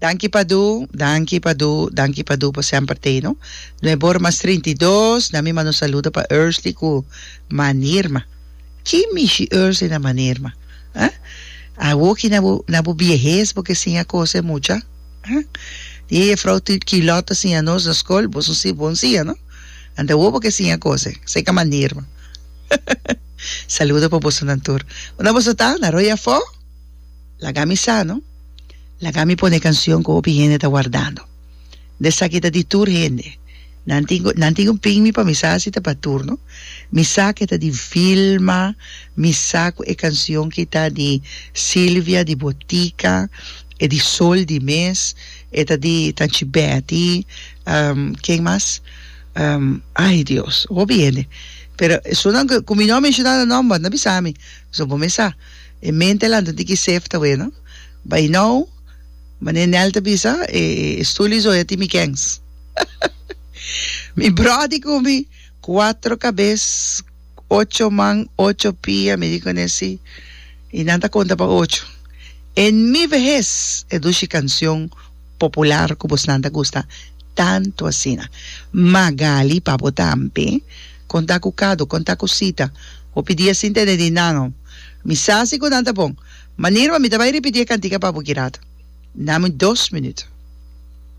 Danki Padu, danki Padu, danki Padu por semper t'ei no. Nueve ora mas trinta i dos, na mi manda un saludo pa Ursley cu Manirma. Ki mishi Ursley na Manirma? Ah? Awoki na bo na bo biehes bo ke siña cos e mucha? Ah? Di e jefrouw Tut Quilot a siña nos na scol, boso si bon siña no? Ante awo bo ke siña cos e, seca Manirma. Saludo pa bosonan tur. Unda boso ta? Na Rooi Afó? Laga mi sa no. Laga mi pone e canción cu hopi hende ta wardando. Nde esaki ta di tur hende. Nan tin cu nan tin cu pin mi pa mi sa si ta pa tur no. Mi sa cu e ta di Vilma, mi sa cu e canción cu ta di Silvia di Botica, e di Sol di mes, e ta di Tanchi Betty, ken mas? Um, ay Dios, hopi hende. Pero esunnan cu, cu mi no a menciona nan nomber, no a bisa mi. Pasobra bo mester sa, e mente alantra tin ki save ta weno. Bay now, mane Nel ta bisa, e, e stuli so ya tin mi kens. mi brodi cu mi, cuatro cabes. ocho man, ocho pia, mi di cu ne si, y nan ta conta pa ocho. En mi vehez, e dushi cancion popular cu bosnan ta gusta tanto asina. Magali, pa bo tambe, conta cu Cado, conta cu Sita, bo pidi e sin tene di nan ho. Mi sa si cu nan ta bon. Manera, mi ta bay repiti e cantica pa bo girato. Nami dos minuto.